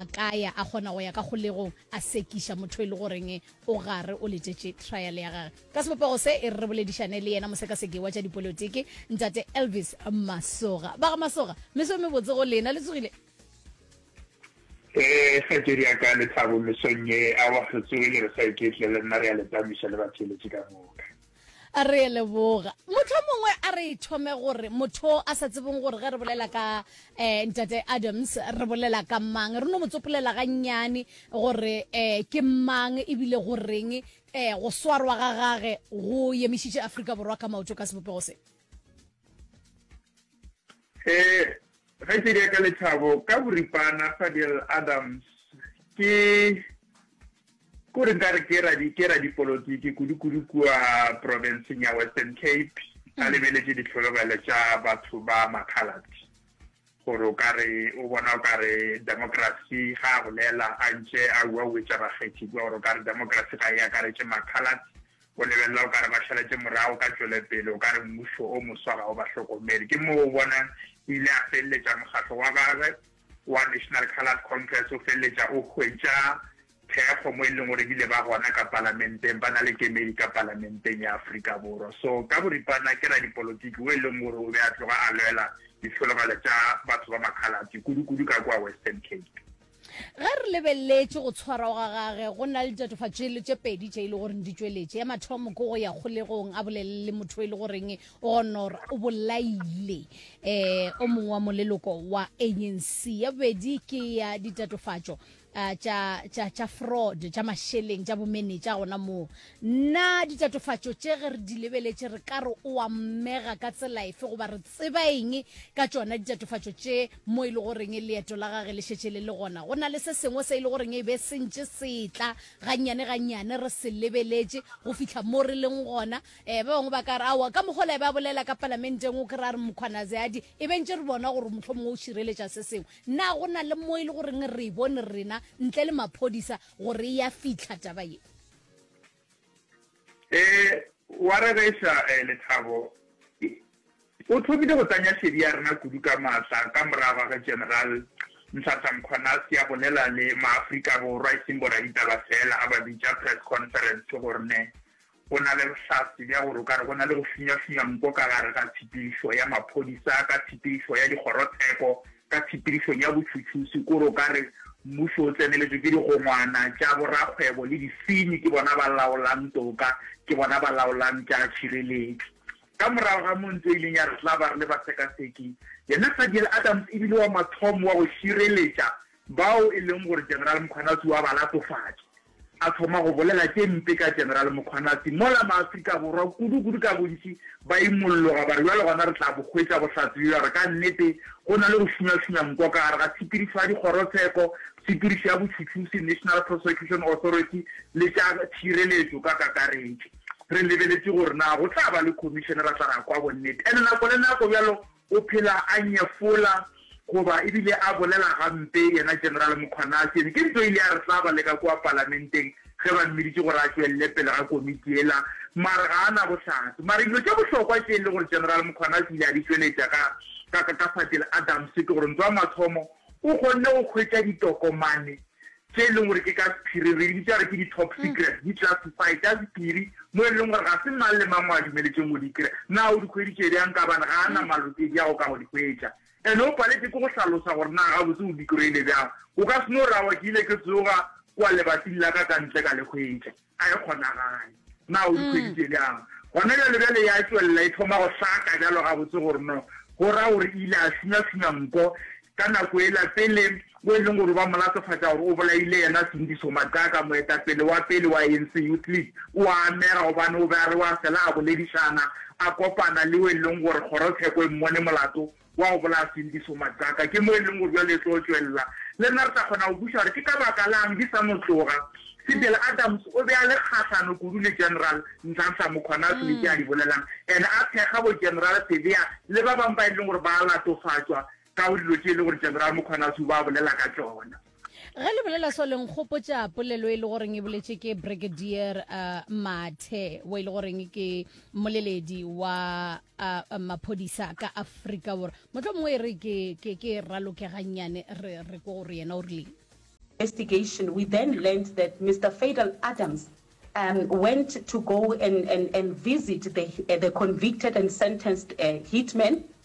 A ka ya, a kgona go ya ka kgolegong, a sekiša motho e le goreng o gare o letšetše trial ya gage. Ka sebopego se, e re re boledišane le yena mosekaseki wa tša dipolotiki, Ntate Elvis Masoga. Ba ga Masoga, meso e mebotse go lena. Le tsogile? Ee, kgaetšedi ya ka Lethabo, mesong ye, aowa, re tsogile, re sa iketla, le nna re a le tamiša le batheeletši ka moka. A re leboga. Mohlomongwe a re thome gore motho a sa tsebeng gore ge re bolela ka um Ntate Adams re bolela ka mang, re no mo tsopolela gannyane gore um ke mang ebile go reng um go swarwa ga gage go yemišitše Afrika Borwa ka maoto ka sebopego se. He, ge ke nyaka lethabo ka boripana, Fadiel Adams, ke, ke gore nka re ke radi, ke radipolotiki kudu-kudu kua profenseng ya Western Cape, a lebeletše dihlologelo tša batho ba Makhaladi. Gore o ka re, o bona o ka re demokrasi, ge a bolela a ntše a uauetša bakgethi kua, gore o ka re demokrasi ga e akaretše Makhaladi, O lebelela o ka re ba šaletše morago ka tšwelepele, o ka re mmušo o moswa ga o ba hlokomele. Ke moo o bonang o ile a feleletša mokgatlo wa gagwe wa National Coloured Congress o feleletša o hwetša thekgo mo e leng gore ebile ba gona ka palamenteng, ba na le kemedi ka palamenteng ya Afrika Borwa. So ka boripana ke radipolotiki wo e leng gore o be a tloga a lwela ditlhologelo tša batho ba makhalate kudu-kudu ka kua Western Cape. Ge re lebeleletše go tshwarwa ga gage, go na le ditatofatšo tše pedi tše e le goreng di tšweletše. Ya mathomo ke go ya kgolegong a bolelele le motho e le goreng o gonora o bolaile um o mongwe wa moleloko wa ANC. Ya bobedi ke ya ditatofatšo um tša tša tša fraud tša mašeleng tša bomenetša gona moo. Na ditatofatšo tše ge re di lebeletše re ka re o a mmega ka tsela efe goba re tseba eng ka tšona ditatofatšo tše Mo e le goreng leeto la gage le šetše le le gona, go na le se sengwe se e le goreng e be se ntše se tla gannyane-gannyane, re se lebeletše go fihla mo re leng gona. Ee, ba bangwe ba ka re, Aowa, ka mokgwa ola e be a bolela ka Palamenteng, o kry-a a re, Mkhwanazi a di, e be ntše re bona gore mohlomongwe o šireletša se sengwe. Na go na le mo e le goreng re e bone rena, ntle le maphodisa, gore e ya fihla taba ye? E wa rereša eh, Lethabo o thomile go tanya šedi ya rena kudu ka matla ka morago ga ge General Nhlanhla Mkhwanazi a bolela le Maafrika Borwa, e seng boraditaba feela, a ba bitša press conference. Ke gore ne go na le bohlatse bja gore o ka re go na le go finywa-finywa nko ka gare ga tshepedišo ya maphodisa ka tshepedišo ya dikgorotsheko. Ka tshepedišong ya botšhotšhusi kore o ka re mmušo o tseneletšwe ke digongwana tša borakgwebo le disenyi, ke bona ba laolang toka, ke bona ba laolang tša tšhireletšo. Ka morago ga moo, ntlo e ileng ya re tla ba re le basekaseki, yena Fadiel Adams e bile wa mathomo wa go šireletša bao e leng gore General Mkhwanazi o a ba latofatša. a thoma go bolela tše mpe ka General Mkhwanazi, mola maAfrika Borwa kudu-kudu ka bontši ba imolloga ba re bjale gona re tla bo hwetša bohlatse bjo, ya re ka nnete go na le go šunywa-šunywa nko ka gare ga tshepedišo ya dikgorotsheko, tshepedišo ya botšhutšhusi, National Prosecution Authority, le tša tšhireletšo ka kakaretšo. Re lebeletše gore na go tla ba le khomišene ra tla ra kwa bonnete, and nako le nako bjalo O phela a nyefola goba e bile a bolela gampe, yena General Mkhwanasyeni. Ke nto ile ya re hlaba le ka kua Palamenteng ge ba mmiditše gore a tšwelele pele ga komiti yela, mare ga a na bohlatse. Mare dilo tše bohlokwa tše e le gore General Mkhwanasi o ile a di tšweletša ka, ka, ka Fatshe le Adams ke gore ntwa ya mathomo o kgonne go hwetša ditokomane tše e leng gore ke ka sephiri, re di bitša gore ke di-top secret, di classified ka sephiri, mo e leng gore ga se mang le mang o a dumeletšeng go di kry-a. Na o di hweditše bjang? Kabane ga a na malokedi a go ka go di hwetša. And o paletše ke go hlalosa gore na gabotse o di kry-ile bjang. O ka se no ra wa ke ile ke tsoga kwa lebating la ka ka ntle ka le hwetša. Ga e kgonagale. Na o dikgwedi tše bjang gona bjale? Bjale ya tšwelela e thoma go hlaka bjalo gabotse gore no, go ra gore e ile a suna-suna nko ka nako ela pele, mo e leng gore ba mo latofatša gore o bolaile yena Sindiso Maxaka, moetapele wa pele wa ANC Youth League. O a amega gobane o be a re wa fela a boledišana, a kopana le yo e leng gore kgorotsheko e mmone molato. Wa go bolaya Sindiso Madaka ke mo e leng gore bjale e tlo tšwelela. Le nna re tla kgona go kweša gore ke ka baka la'ng di sa no tloga. Sibele Adams o be a le kgahlano kudu le General Nhlanhla Mkhwanazi le tše a di bolelang, ene a thekga bo General Sibiya le ba bangwe ba e leng gore ba a latofatšwa ka go dilo tše e leng gore General Mkhwanazi o be a bolela ka tšona. Ge le bolela so le nkgopotša polelo e le goreng e boletše ke Brigadier uh, Mathe wa e le goreng ke moleledi wa uh, maphodisa ka Afrika Borwa. Motho mongwe e re ke ke ke ralokegannyane re re ko gore yena o rileng. investigation, we then learned that Mr. Fadel Adams um, went to go and, and, and visit the, uh, the convicted and sentenced uh, hitman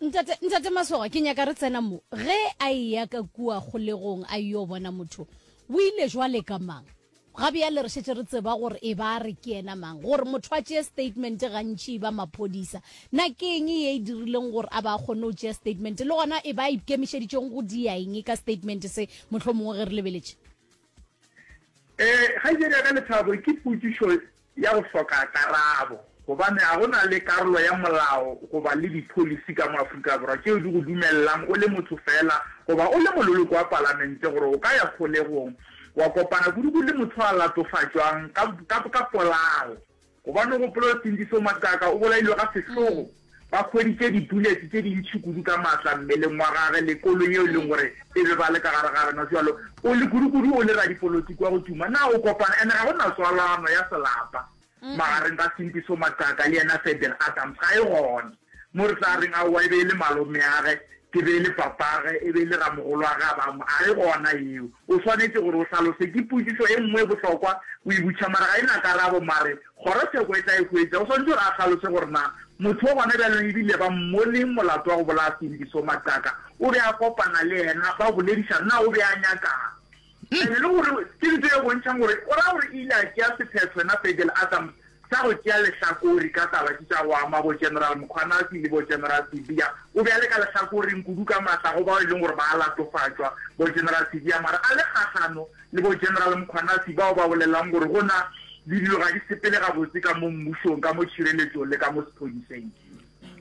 Ntate, Ntate Masogwa, ke nyaka re tsena mo. Ge a eya ka kua kgolegong a yo bona motho, o ile jwale ka mang? Ga bjale re šetše re tseba gore e ba a re ke yena mang. Gore motho a tšee statement gantši e ba maphodisa. Na ke eng ye e dirileng gore a ba a kgonne go tšea statement? Le gona e ba a ikemišeditšeng go dia eng ka statement se, mohlomongwe ge re lebeletše? Ee, kgaetšedi ya ka Lethabo, ke potšišo ya go hloka karabo, gobane ga go na le karolo ya molao goba le dipholisi ka mo Afrika Borwa tšeo di go dumelelang o le motho feela goba o le mololoko wa palamente gore o ka ya kgolegong wa kopana kudu-kudu le motho a latofatšwang ka, ka, ka polao. Gobane o gopolwe sentši seo Makaka o bolailwe ga sehlogo, ba hweditše dibulete tše dintši kudu ka maatla mmeleng wa gage le koloi yeo e leng gore e be ba le ka gare ga yona. Bjalo o le kudukudu o le radipolotiki wa go tuma. Na o kopana? Ene ga go na tswalano ya selapa magareng ga Sintiso Makaka le yena Ferdinand Adams, ga e gona. Mo re tla reng aowa e be e le malomeage, ke be e le papage, e be e le ramogolwage a ba mo a re gona yeo. O swanetše gore o hlalose. Ke potšišo e nngwe e bohlokwa o e butšha mara ga e na karabo mare kgorotsheko e tla e hwetša. O swanetše gore a hlalose gore na motho wo gona bjalong e bile ba mmo leng molato wa go bolaya Sindiso Mataka. O be a kopana le yena ba boledišana na o be a nyaka'ng. And le gore ke ntho e bontšhang gore o ra gore e ile a tšea sephetho yena Pegel Adams sa go tšea lehlakori ka taba tše tša go ama bo General Mkhwanazi le bo General Sibiya. O be a le ka lehlakoreng kudu ka matla go bao e leng gore ba a latofatšwa, bo General Sibiya, mara a le kgahlano le bo General Mkhwanazi bao ba bolelang gore go na le dilo ga di sepele gabotse ka mo mmušong, ka mo tšhireletšong le ka mo sephodiseng.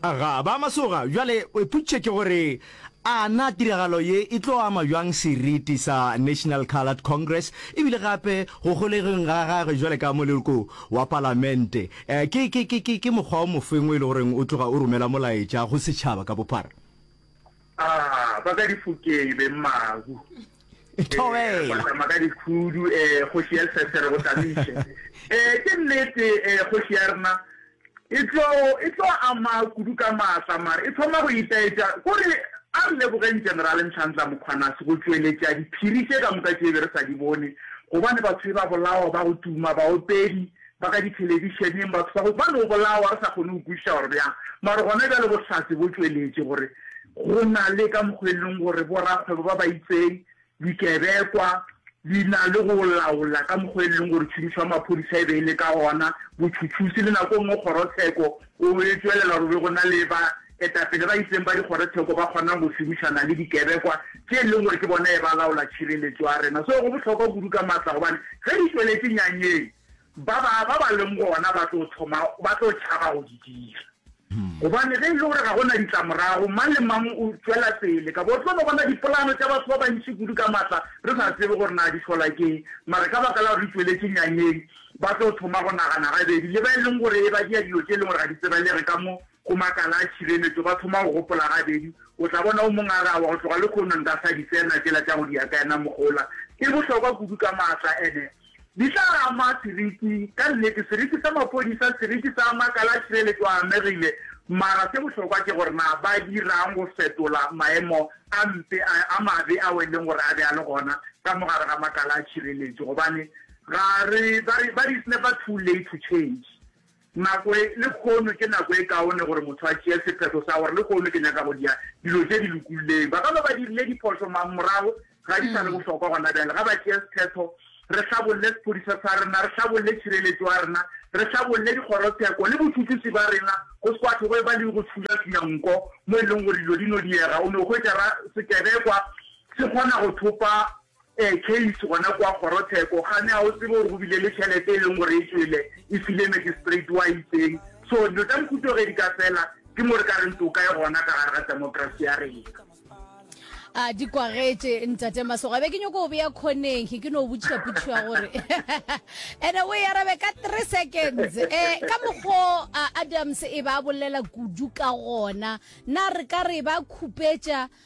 Aga, ba masoga, bjale ipotšiše ke gore, A na tiragalo ye e tlo ama bjang seriti sa National Coloured Congress e bile gape go golegeng ga gagwe bjale ka moleko wa Palamente? Ke, ke, ke, ke, ke mokgwa o mofeng o e le goreng o tloga o romela molaetša go setšhaba ka bophara? a ba ka difokeng be mmagu tama ka dikhudu um kgoši ya sesere go tamiše um ke nnete um kgoši ya rena e tlo ama kudu ka maatla mare e thoma go itaetša kore a re lebogeng generale ntlhantla mokgwanase go tšweletša diphiri tše ka moka tše be re sa di bone gobane batho e ba bolawa ba go tuma baopedi ba ka dithelebišeneng, batho ba go ba no bolawa re sa kgone go kwešiša gore bjang, mara gona bjale bohlatse bo tšweletše gore go na le ka mokgwa e leng gore borakgwebo ba ba itseng, dikebekwa di na le go laola ka mokgwa e leng gore tšhomišo ya maphodisa e be e le ka gona, botšhotšhusi le nako e nngwe kgorotsheko o e tšwelela gore be go na le ba etapele ba itseng ba dikgorotsheko ba kgonang go šomišana le dikebekwa tše e leng gore ke bona e ba laola tšhireletšo ya rena. So go bohlokwa kudu ka matla gobane ge di tšweletše nyanyeng, Ba ba ba ba leng gona ba tlo thoma ba tlo tšhaba go di dira. Gobane ge e le gore ga go na ditlamorago, mang le mang o tšwela pele. Ka bo tlo no bona dipolano tša batho ba bantši kudu ka matla re sa tsebe gore na di hlola keng. Mara ka baka la gore di tšweletše nyanyeng, ba tlo thoma go nagana gabedi. Le ba e leng gore e ba dira dilo tše e leng gore ga di tsebelege ka mo go makala a tšhireletšo, ba thoma go gopola gabedi. O tla bona o mong a re, Aowa, go tloga lekhono nka sa di tsena tšela tša go di akaena mogola. E bohlokwa kudu ka matla. Ene Di tla ama seriti. Ka nnete, seriti sa maphodisa, seriti sa makala a tšhireletšo a amegile, mara se bohlokwa ke gore na ba dira'ng go fetola maemo a mpe a, a mabe ao e leng gore a be a le gona ka mo gare ga makala a tšhireletšo, gobane ga re, ba re, ba re it's never too late to change. Nako e, Lehono ke nako e kaone gore motho a tšee sephetho sa gore lehono ke nyaka go dia dilo tše di lokulleng. Ba ka no ba dirile diphošo mang morago ga di sa le bohlokwa gona bjale. Ga ba tšee sephetho, re hlabolle sephodisa sa rena, re hlabolle tšhireletšo ya rena, re hlabolle dikgorotsheko le botšutšusi ba rena go se kwatho go e ba le go tšhunyatšhunya nko mo e leng gore dilo di no diega. O no hwetša ra sekebekwa se kgona go thopa Ee, Kate, gona kua kgorotsheko. Gane ga o tsebe gore go bile le tšhelete e leng gore e tšwele e file magistrate wa itseng. So, dilo tša mohuto ge di ka fela, ke mo re ka reng toka e gona ka gare ga democracy ya rena. A di kwagetše, Ntate Masoga. Be ke nyoko go bea khoneng he, ke no butšha putšhu ya gore ene o e arabe ka three seconds. Eh, ka mokgo a Adams e ba bolela kudu ka gona, na re ka re ba khupetša